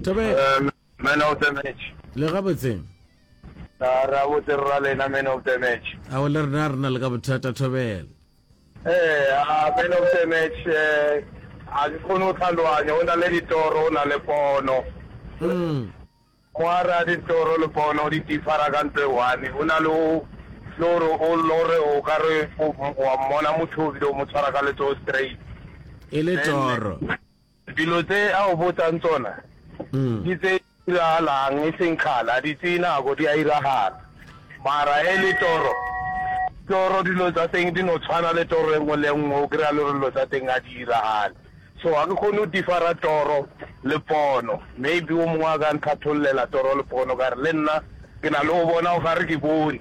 Thobela. Um, man of the match. Le gabotse. Ah, ra botse ra lena man of the match. A o le rena rena le ka bothata Thobela. Eh, ah, man of the match eh a ke khone o tlhaloanya o na le ditoro o na le pono. Mm. Moara ditoro le pono di differa ka ntwe one. O na le o loro o lore o ka re o mmona motho o bile o mo tshwara ka letso straight. E le toro. Dilo tse a go botsang tsona ke tse di diragalang, e seng kgale, a di tseye nako, di a diragala. Mara ge e le toro, toro dilo tsa teng di no tshwana le toro e nngwe le e nngwe, o kry-a le gore dilo tsa teng ga di diragale. So ga ke kgone go differ-a toro le pono. Maybe o mongwe a ka nthatholela toro le pono, ka re le nna ke na le go bona o ka re ke bone.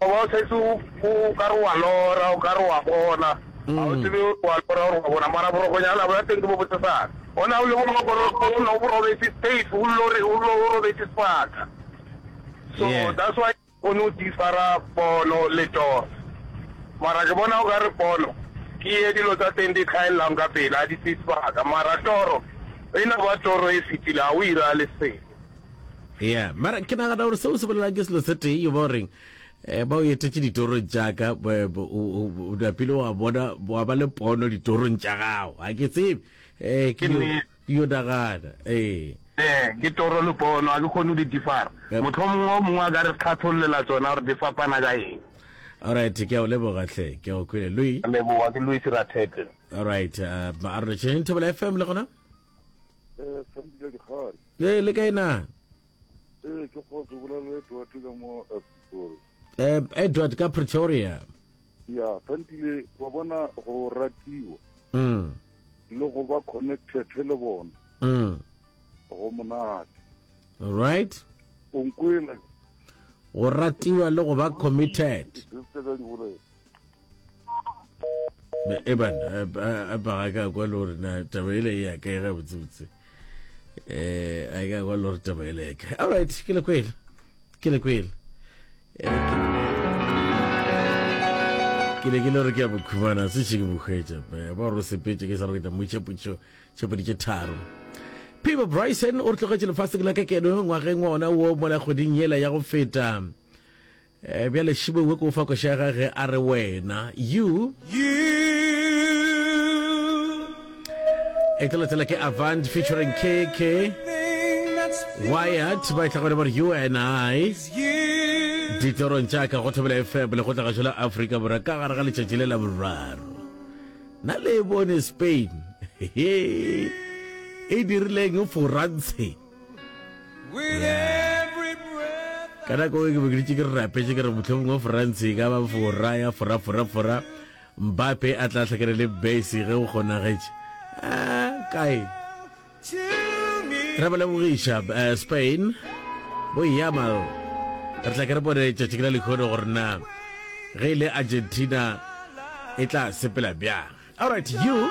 O ba o setse o ka re wa lora, o ka re wa bona, ga o tsebe gore wa lora gore wa bona, mara borokonyana bja teng ke bo botesana. O ne o le boroko, boroko o ne o bo robetse safe, o lore, o lo, o robetse sebaka. So Yeah. that's why o ne o differa pono le toro. Mara ke bona o ka re pono ke ye dilo tsa teng di tlhaelelang ka pele, ga di tseye sebaka. Mara toro e ne ba toro e fetile, ga o ira le selo. ya mara ke nagana gore seo se bolelang ke selo se tee yo ba goreng um ba o etetše ditorong jaaka dapile wa bona wa ba le pono ditorong tša gago ga ke tsebe um ke yo nagana ee um ke toro le pono ga ke kgone go di difara motlho mongwe o mongwe a ka re tlhatlhololela tsona gore di fapana ka eng alright ke a o leboga tlhe ke a o kwele lui leboga ke lui sirathete alright a re tšheng thobela fm le gona Ee, le kae na? Ee, ke kgotse bolela Edward ka mo Pretoria. Eh, Edward ka Pretoria. Ya, Thantile, wa bona go ratiwa. Mm. Le go ba connected le bona. Mm. Go monate. All right. O nkwela. Go ratiwa le go ba committed. Ke tsela di bolela. eban a paga ka kwa le gore na taba ele e ya kae gabotsebotse eh a ka kwa le gore taba ele ya kae alright ke le kwele ke le kwele ke ne ke le gore ke ya bokhumana se še ke bokgwetša ba gore o sepetse ke sa gore ke tla mo itšhepotšo tšhepoditše tharo Pivo Bryson o re tlogetše lefatsheng la ka keno ngwageng wa ona wo mola kgweding yela ya go feta Eh, bjale šibo we ke o fa košega ge a re wena you e tla latela ke avant featuring kk wyatt ba e tla gone ba re you and i ditlorong tša ka go thobela fm le go tlagatšo la aforika borwa ka gare ga letšatši le la boraro na le e bone spain e dirileng forantshe ka nako e ke be ke ditše ke re rapetše ke re mohlomong wa france e ka ba fora ya foraforafora mbape a tla hlakana le base ge o kgonagetše ah, kae re ba lebogiša eh, spain bo yamal re tla ke re bone tšatši ke la lekgono gore na ge e le argentina e tla sepela bjang alright you